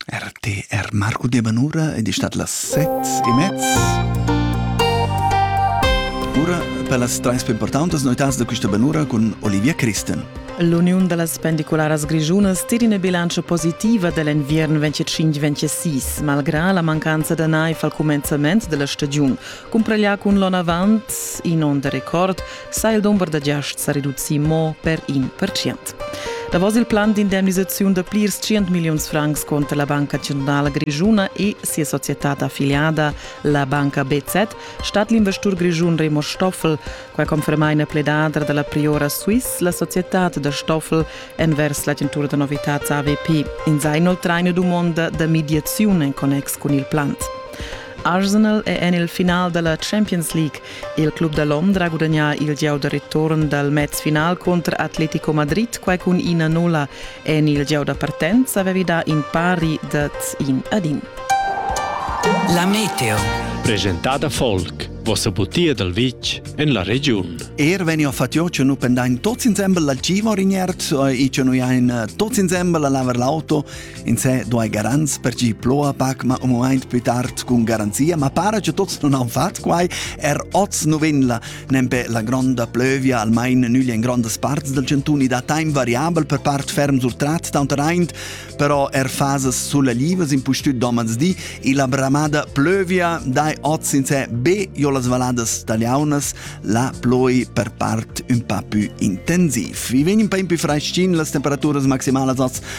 RTR Marco Debanura ed è stat las sets e mez. Ora per las trens più importanti novità da questa Banura con Olivia Christen. L'Uniun da las Pendicularas Grischunas tira una bilancia positiva dell'invierno 25-26, malgré la mancanza de neif al començament de la stagiun. Cumprellar cun l'on avant, in on de record, sa il dumber da giasts sa reducir mo per in percent. Davos il plan d'indemnisaziun da plirs 100 milliuns francs contra la Banca Centrala Grischuna e sia società affiliada, la banca BZ, stat l'investur grischun Remo Stoffel. Quai conferma ina pledadra da la priora Swiss, la societad da Stoffel, envers l'agentura da novitads AVP. In sa inoltrar ina dumonda da mediaziun en connex cun il plant. Arsenal è en il final da la Champions League. Il club da Londra ha gudagnà il gieu da return dal mez final cunter Atletico Madrid quai cun ina nulla. En il gieu da partenza avevi dà in pari dad in ad in. La meteo. Presentada Volk, vossa butia dal vitg en la regiun. Er vegni a fatio che nu pendain tots insembel la cima or in ierz, e che noi ein tots insembel a lavar l'auto, In se duai garants per chi ploa pac ma umuaint pü tard cun garanzia, ma para che tots non han fat quai, er oz nu venla, nempe la gronda plövia almain nüglia in grondas parts del cantun da time variabel per part ferm surtrat taunt raint, però er fasas sulalivas in pustüt domans di, e la bramada plövia dai oz in se be jo las valadas taliaunas, la ploi per part un pa pü intensiv. Vi vegn un pa in pü freschin las temperaturas maximalas oz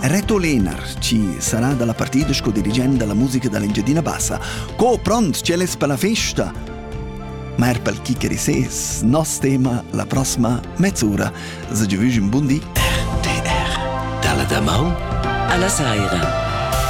Reto Lenars ci sarà dalla partita sco dirigent dalla musica dall'Engiadina Bassa. Co pront c'è les per la festa? Ma er pel chi che rises, nos tema la prossima mezz'ura. Se giovüsch un bun di. RTR. Dalla damaun alla saira.